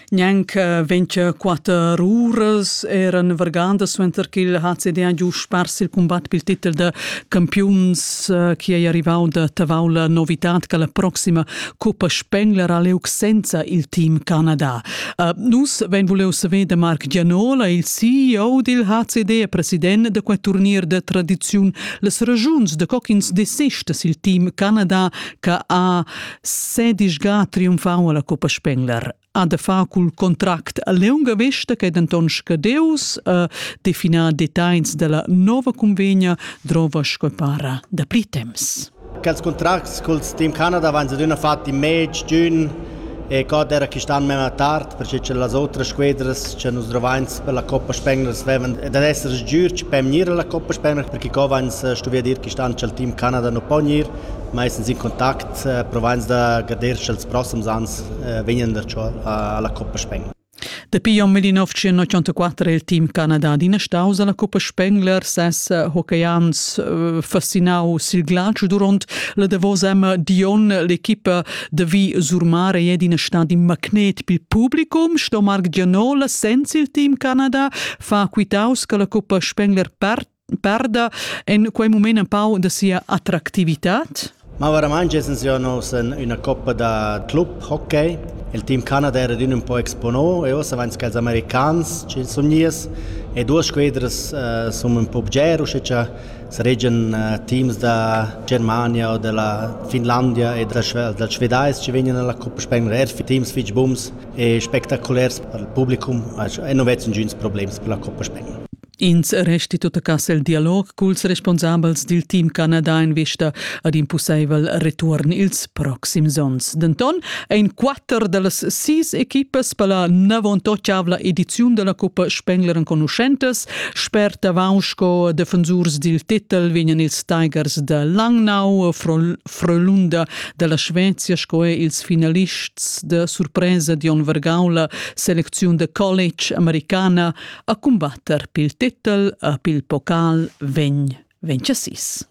Gnanca ventgaquatter uras eran vargandas suenter ch'il HCD ha giu spars il cumbat pil titel da campiuns eh, chi ei arrivau da Tavau la novitad che la proxima Coppa Spengler ha leu senza il team Canada. Eh, nus vein vuliu saver da Marc Gianola, il CEO dil HCD e president da quei turnier de tradiziun, las ragiuns da co ch'ins desista sil team Canada che ha Sedisga triumfau alla Coppa Spengler ha da far cul contract a leunga vesta che denton scadeus a definar designs della nova convegna drova sco para da pli temps. Quels contracts col team Canada van adüna fatti mez giugn e god era quist'an mema tard perché che las otras squadras che nus drovains per la Coppa Spengler vevan da essere giur per gnir alla Coppa Spengler perché co vains stuvi dir quist'an che il team Canada non po gnir meistens in contact, provains da guder sch'els proxims ans vegnan darcho alla Coppa Spengler. Dapi jon 1984 è il team Canada adina staus alla Coppa Spengler. Ses hockeyans eh, fascinau sil glatsch duront la davos emma Dion l'equipa de Vi Surmare è in stad in magnet pil publicum. Sto Marc Gianola senza il team Canada fa quitaus che la Coppa Spengler part perda en quei moment un pau da sia attractivitad? Ma veramente wir haben una coppa da club hockey. Il team Canada era un po' exponò e ossa vanns els americans ci sun nies e duas squadras uh, sun un po' bger usche cha saregian uh, teams da Germania o della Finlandia e della, della Svedais ci vegnan alla Coppa Spengler er für teams fitch bums e spektakulars per il publicum e non vezzan gins problems per la Coppa Spengler. Ins resti tuttacass el dialog culs responsabels dil team Canada en vista ad in pusseivel retuorn ils proxims onns. Denton ein quatter dallas sis equipas per la navontotschavla ediziun della Cuppa Spengler enconuschentas. Spert avon sco defensurs dil titel vegnan ils Tigers da Langnau, Frölunda dalla Svezia sco er ils finalists de surpresa Dion Vergaula, selecziun de college americana, a cumbatter pil titel e pil pocal vegn vegn chassis.